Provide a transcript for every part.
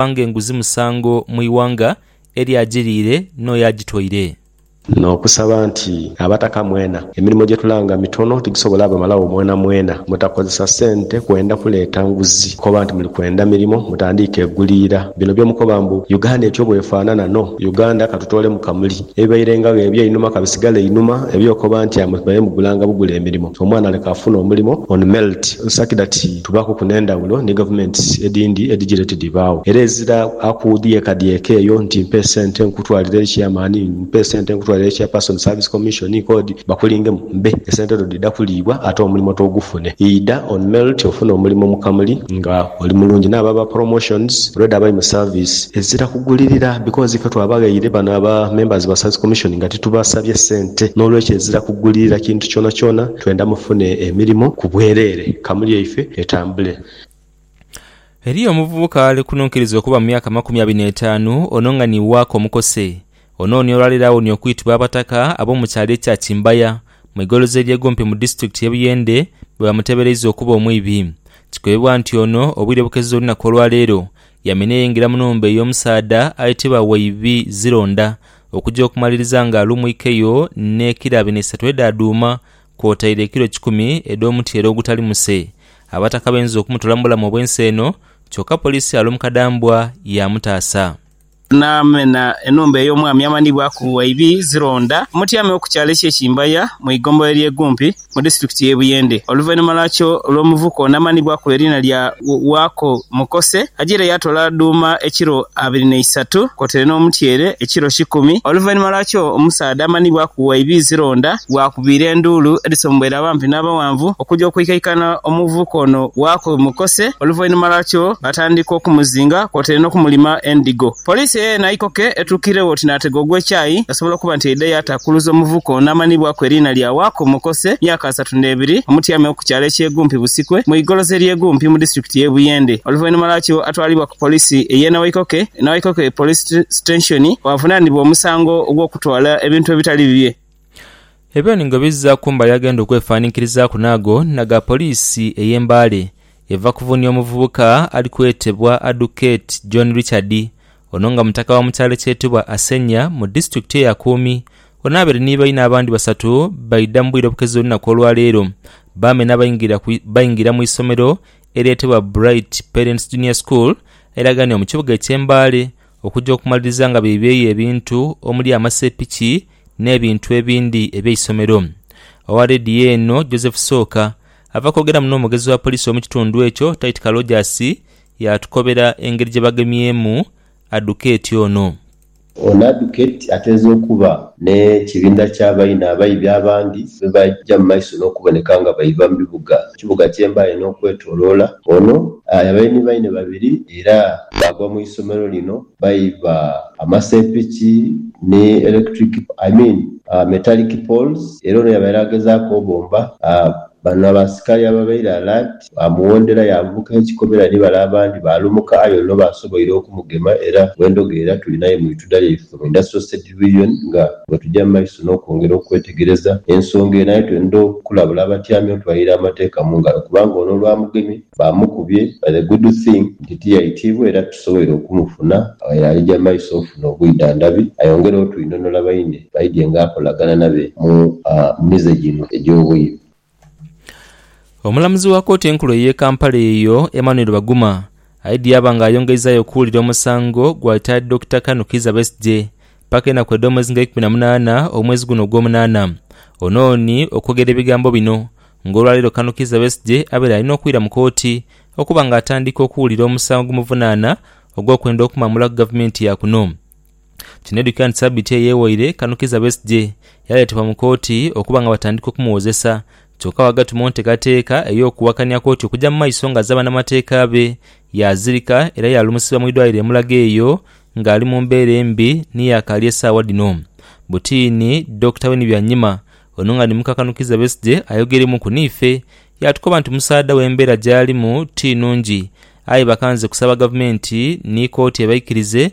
kubanga enguzi musango mu ighanga, erio agiriire n'oyo agitoire. N'okusaba nti, Abataka mwena, emirimo gye tulanga mitono tigisobola bamalagho mwenamwena. Mutakozesa sente kwenda kuleeta nguzi, koba nti muli kwenda mirimo mutandiike eguliira. Bino bye mukoba mbu, Uganda etyo bw'efaanana, no, Uganda ka tutoolemu kamuli. Ebibairengagho eby'einhuma ka bisigale einhuma, eby'okoba nti amwe baire mugulanga bugule emirimo, omwana leka afune omulimo on melt, such that. Tubakuku n'endhawulo ni gavumenti edhindi edhigireete dhibaagho. Era ezira aku dhyekadhyeka eyo nti mpa esente nkutwalire eri Chairman, mpa esente nkutwalire eri Chairperson, Service Commission, Code, bakulingemu bbe. Esente dho dhidha kuliibwa ate omulimo togufune. Idha on merit ofune omulimo mu kamuli nga oli mulungi. N'abo aba promotions already abali mu service. Ezira kugulirira because ife twabaghaire bano aba members ba Service Commission nga titubasabye sente. N'olwekyo ezira kugulirira kintu kyonakyona. Twenda mufune emirimo ku bwereere kamuli yaife etambule. Eriyo omuvubuka ali kuno nkiriza okuba mu myaka amakumi abiri n'etaanu, ono nga ni waaka omukose. Ono ni olwaleero awonye okwitibwa Abataka ab'omu kyalo ekya Kimbaya mu igolozi erye Gompe mu disitulikiti ye Buyende bwebamutebereiza okuba omwibi. Kikweebwa nti ono obwire bukeze olunaku olwaleero Yamina yaingira mu nhumba ey'omusaadha aitibwa Waibi Zironda okuja okumaliriza nga alumwikeyo n'ekira bina isatu edha dhuuma kwotaire ekiro kikumi edh'omutyeere ogutali muse. Abataka bainza okumutola mu bulamu obw'ensi eno kyoka poliisi ya Lomukadambwa yaamutaasa. Naamena enhumba ey'omwami amanhibwaku Waibi Zironda Mutyame oku kyalo eky'e Kimbaya mu igombolola ly'e Gumpi. mu disitulikiti y'e Buyende. Oluvainhuma lwakyo olw'omuvuko n'amaani gwakola eriina lya Waako Mukose, ajaire yaatoola dhuuma ekiro abiri na isatu kwotaire n'omutyeere ekiro kikumi. Oluvainhuma lwakyo omusaadha amaani gwakuwa ibiizi londa gwakubiira enduulu edhisombweire abampi n'abawanvu okuja okwikaikana omuvubuka ono Waako Mukose oluvainhuma lwakyo baatandika okumuzinga kwotaire n'okumulima endhigo. Poliisi eyaye naikoke etuukiregho oti naatega ogw'ekyayi. Asobola okuba nti yaidha yaatakuluza omuvuka ono amanhibwaku eriina lya Waako Mokose, myaka asatu n'ebiri, omutyame w'oku kyalo eky'e Gumpi Busikwe mu igoloza ery'e Gumpi mu disitulikiti y'e Buyende. Oluvainhuma lwakyo atwalibwa ku poliisi ey'e Nawaikoke, Nawaikoke Police Sitenshoni, waavunaanibwa omusango ogw'okutwala ebintu ebitali bibye. Ebyo ni nga bizira ku mbali agenda okwefaaniikirizaaku n'ago aga poliisi ey'e Mbale eva kuvunia omuvubuka ali kwetebwa Aduketi John Richard Ono nga mutaka wa mu kyalo ekyetebwa Asenya mu disitulikiti eya Kuumi, ono abaire ni baine abandi basatu baidha mu bwire obukeze olunaku olwaleero baamena baingira mu isomero eryetebwa Bright Parents Junior School airaganio mu kibuga ekye Mbale okuja okumaliriza nga beibyeyo ebintu omuli amasepiki n'ebintu ebindi eby'eisomero. Owa Radio eno Joseph Sooka ava kwogeramu n'omwogezi wa poliisi omu kitundu ekyo Tight Kalojasi Yaatukobera engeri gye bagemyemu Adukeeti ono. Ono Adukeeti ateeza okuba n'ekibinda ky'abaine abaibi abandi be baja mu maiso n'okuboneka nga baiba mu bibuga ekibuga kyembaire n'okwetoloola. Ono yabaire ni baine babiri era baagwa mu isomero lino baiba amasepiki ni electric I mean metallic poles era ono yabaire agezaaku obomba bano abasikali ababaire alert. Baamuwondera, yaanguka ekikobera ni bale abandi baalumuka aye ono baasoboire okumugema era bwendhoga era tuli naye mu itudha lyaife mu Industrial State Division nga bwetuja mu maiso n'okwongera okwetegereza ensonga eno aye twendha okulabula abatyami otwalira amateeka mu ngalo kubanga ono olwamugemye baamukubye but the good thing nti tiyaitibwa era tusoboire okumufuna aye alija maiso ofuna obwidhandhabi ayongere otwinhonola baine baidye nga akolagana nabe mu mize gino egy'obwiire. Omulamuzi wa kooti enkulu ey'e Kampala eyo, Emmanuel Baguma aidhye yaba nga ayongeizaayo okuwulira omusango gwa Itaadi Dokita Kanu Kiiza Besigye paka enaku edh'omwezi nga eikumi na munaana omwezi guno ogwomunaana onooni okwogera ebigambo bino nga olwaleero Kanu Kiiza Besigye abaire alina okwira mu kooti okuba nga atandika okuwulira omusango ogumuvunaana ogw'okwenda okumamula ku gavumenti yakuno. Kinedhukira nti sabiiti eyo eyewaire Kano Kizza Besigye yaleetebwa mu kooti okuba nga batandika okumuwozesa kyoka wagati mu ntekateeka ey'okuwakania kooti okuja mu maiso nga azze banamateeka be yazirika era yalumusibwa mu idwaliro e Mulago eyo nga ali mu mbeera embi ni yakaali esaawa dhino Butiini Dokita Winnie Byanyima ono nga ni muka Kano Kizza Besigye ayogeremuku niife yatukoba nti omusaadha we embeera gyalimu ti nungi aye bakanze kusaba gavumenti ni kooti ebaikirize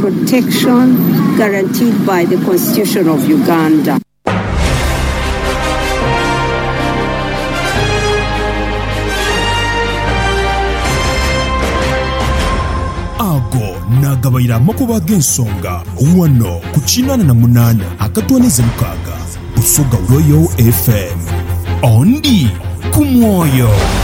protection guaranteed by the Constitution of Uganda. Ago naagabaire amakubo ag'ensonga ghano ku kinaana na munaana akatwanize mukaaga Busoga Royal FM. Ondi ku mwoyo.